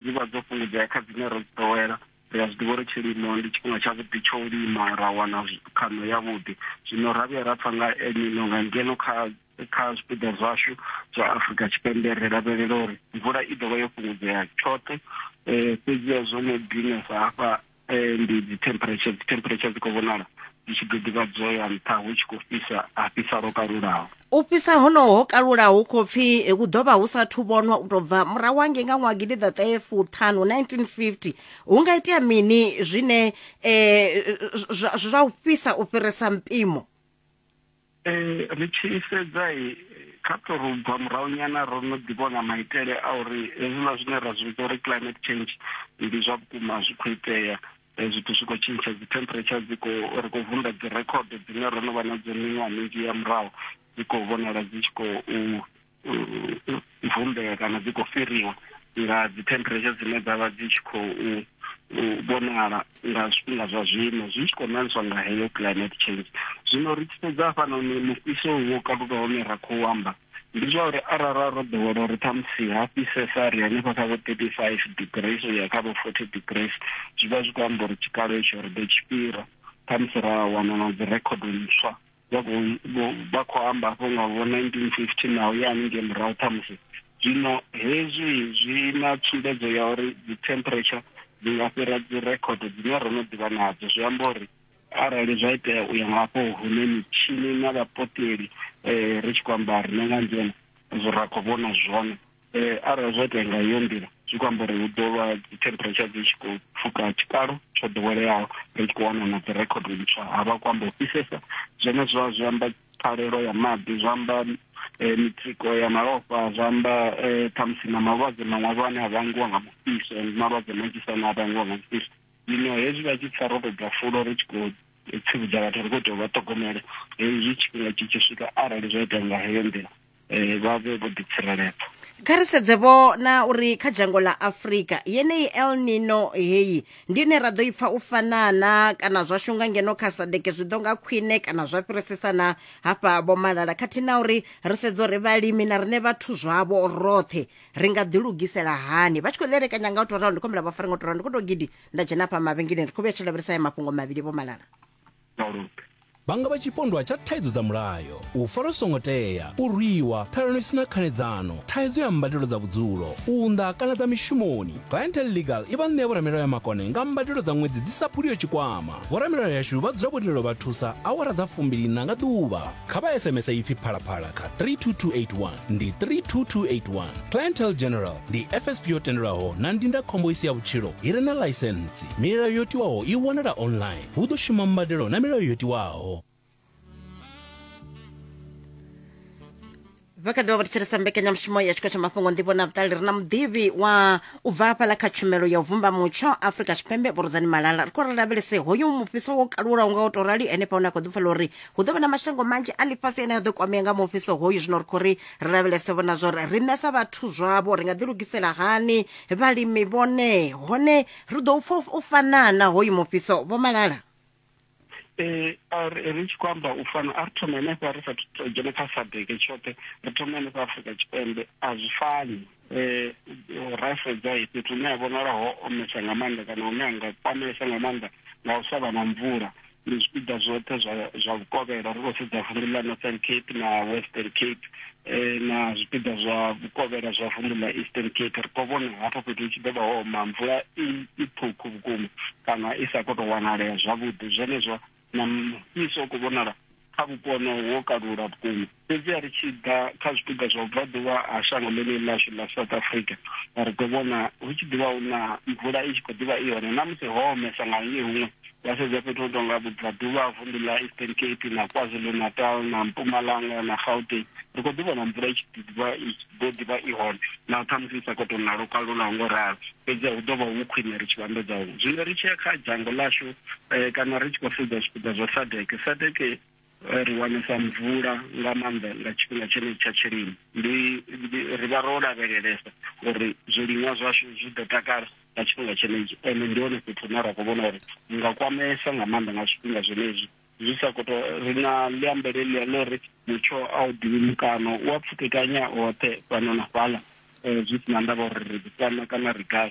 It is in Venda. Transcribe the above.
dzi vha dzo fhungudzea kha dzine ro dzi ḓowela ri a zwi ḓivha uri tshilimo ndi tshifhinga tshavhuḓi tsho u lima ra wana khaṋo yavhuḓi zwino ra vhuya ra pfa nga elnino nga ngeno kha kha zwipiḓa zwashu zwa afurika tshipembe ri lavhelela uri mvula i ḓovha yo fhungudzea tshoṱhe um fhedzi hezwo no dinesa hafha Ndi dzi temperature, dzi temperature dzi khou vhonala dzi tshi ḓo ḓivha dzo ya nṱha hu tshi khou fhisa, ha fhisa lwo kalulaho. U fhisa honoho ho kalulaho hu khou pfi hu ḓo vha hu sa thu vhonwa u tou bva murahu hangei nga ṅwaha gidi ḓa ṱahe fuṱhanu 1950. Hu nga itea mini zwine eh, zwa, zwa u fhisa u fhirisa mpimo? Ee, ri tshi sedza kha to ri bva murahu nyana ro no ḓi vhona maitele a uri hezwiḽa zwine ra zwi vhidza uri climate change ndi zwa vhukuma zwi khou itea eh, zwithu zwi khou tshintsha dzi temperature dzi khou ri khou vunḓa dzi record dzine ro no vha nadzo miṅwaha minzhi ya murahu dzi khou vhonala dzi tshi khou vumbea kana dzi khou fhiriwa nga dzi temperature dzine dza vha dzi tshi khou vhonala nga zwifhinga zwa zwino zwi tshi khou ṋaniswa nga heyo climate change zwino ri tshi sedza hafhanoni mufhiso wo kaluka hone ra khou amba ndi zwa uri arara ro ḓowela uri ṱhamusi ha fhisesa ri hanefha kha vho thirty five degrees u ya kha vho forty degrees zwi vha zwi khou amba uri tshikalo itsho ri ḓo tshi fhira ṱhamusi ra wana na dzi rekhodo ntswa vha khou amba hafho nga vho 1950 na u ya haningei murahu ṱhamusi zwino hezwi zwi na tsumbedzo ya uri dzi temperature dzi nga fhira dzi record dzine ro no ḓivha nadzo zwi amba uri arali zwa itea u ya nga hafho hune mitshini na vhapoteli um ri tshi khou amba rine nga ngeno ra khou vhona zwone Eh, arali zwa itea nga iyo nḓila zwi khou amba uri hu ḓo vha dzi temperature dzi tshi khou pfuka tshikalo tsho ḓoweleaho ri tshi khou wana na dzi record ntswa ha vha khou amba u fhisesa zwone zwa zwi amba phalelo ya maḓi zwa amba eh, mitsiko ya malofha zwa amba eh, ṱhamusi na malwadze maṅwe avho ane a vhangiwa nga mufhiso ndi malwadze manzhisa ane a vhangiwa nga mufhiso zwino hezwi vha tshi pfa ro tou bva fulo ri tshi khou tsivhudza vhathu ri khou tea u vha ṱhogomela hezwi tshifhinga tshi tshi swika arali zwa itea nga heyo nḓila eh, vha vhe vho ḓitsireledza kha ri sedze vho na uri kha dzhango ḽa afurika yeneyi el nino heyi ndi ine ra ḓo i pfa u fanana kana zwa shunga ngeno kha sadeke zwi ḓo nga khwine kana zwa fhirisisa na hafha vho malala khathihi na uri ri sedze uri vhalimi na riṋe vhathu zwavho roṱhe ri nga ḓilugisela hani vha tshi khou ḽelekanya nga u tou ralo ndi khombela vha fare nga u tou ralo ndi khou tou gidi nda dzhena hafha mavhengeleni ri khou vhuya tshi lavhelesa ya mafhungo mavhili vho malala malofha. Vha nga vha tshipondwa tsha thaidzo dza mulayo, u farwa zwi songo tea, u rwiwa, ṱhalano i si na khanedzano, thaidzo ya mbadelo dza vhudzulo, u unḓa kana dza mishumoni. Clientele Legal i vha ṋea vhoramilayo ya makone nga mbadelo dza ṅwedzi dzi sa phuliho tshikwama. Vhoramilayo yashu vha dzula vho lindela u vha thusa awara dza fumbiliiṋa nga ḓuvha. Kha vha SMS ipfi Phalaphala kha 32281, ndi 32281. Clientele General ndi FSP yo tendelwaho na ndindakhombo i si ya vhutshilo i re na ḽaisentsi. Milayo yo tiwaho i wanala online. hu ḓo shuma mbadelo na milayo yo tiwaho vha kha ḓivha vho thetshelesa mbekanyamushumo ya tshiko tsha mafhungo nḓivho na vhuṱali ri na muḓivhi wa u bva hafhaḽa kha tshumelo ya u vumba mutsho afrika tshipembe vhurudzani malala ri khou ri lavhelese hoyu mufhiso wo kalulaho nga u tou rali henefha hune a khou ḓifhela uri hu ḓo vha na mashango manzhi a ḽifhasi ane a ḓo kwamea nga mufhiso hoyu zwino ri khou ri ri lavhelese vhona zwo ri riṋe sa vhathu zwavho ri nga ḓilugisela hani vhalimi vhone hone ri ḓo u pfa u fanaa na hoyu mufhiso vho malala eh ri tshi khou amba u fana a ri thoma henefha ri sathu to dzhena kha sadeke tshoṱhe ri thoma henefha afrika tshipembe a zwi fani um ra sedza fhethu hune ha vhonala ho omesa nga maanḓa kana hune ha nga kwamesa nga maanḓa nga u sa vha na mvula ndi zwipiḓa zwoṱhe zwa zwa vhukovhela ri khou sedza vundu ḽa northern cape na western cape eh, na zwipiḓa zwa vhukovhela zwa vundu ḽa eastern cape ri khou vhona hafho fhethu hu tshi ḓo vha ho oma mvula i i ṱhukhu vhukuma kana i sa khou tou wanalea zwavhuḓi zwenezwo na mufhiso u khou vhonala kha vhupo honoho wo kalula vhukuma Fhedziha ri tshi ḓa kha zwipiḓa zwa vhubvaḓuvha ha shango ḽeneḽi ḽashu ḽa South Africa, ri ḓo vhona hu tshi ḓi vha hu na mvula i tshi khou ḓi vha i hone na musi ho omesa nga hangei huṅwe. Wa sedza fhethu ho tou nga vhubvaḓuvha ha vunḓu ḽa Eastern Cape na KwaZulu-Natal na Mpumalanga na Gauteng, ri khou ḓi vhona mvula i tshi ḓi vha i tshi ḓo ḓi vha i hone naho ṱhamusi i sa khou tou na lwo kalulaho ngo ralo. Fhedziha hu ḓo vha hu khwine ri tshi vhambedza huṅwe. Zwino ri tshi ya kha dzhango ḽashu, kana ri tshi khou sedza zwipiḓa zwa SADEC, SADEC, Ri wanesa mvula nga maanḓa nga tshifhinga tshenetshi tsha tshilimo. Ndi, ndi, ri vha ro lavhelelesa uri zwiliṅwa zwashu zwi ḓo takala nga tshifhinga tshenetshi. Ende ndi hone fhethu hune ra khou vhona uri hu nga kwameesa nga maanḓa nga zwifhinga zwenezwi. Zwi sa khou tou, ri na ḽiambe ḽeḽia ḽa uri mutsho a u ḓivhi mukano, u a pfukekanya hoṱhe fhano na fhaḽa, zwi si na ndavha uri ri ḓi fhano kana ri gai.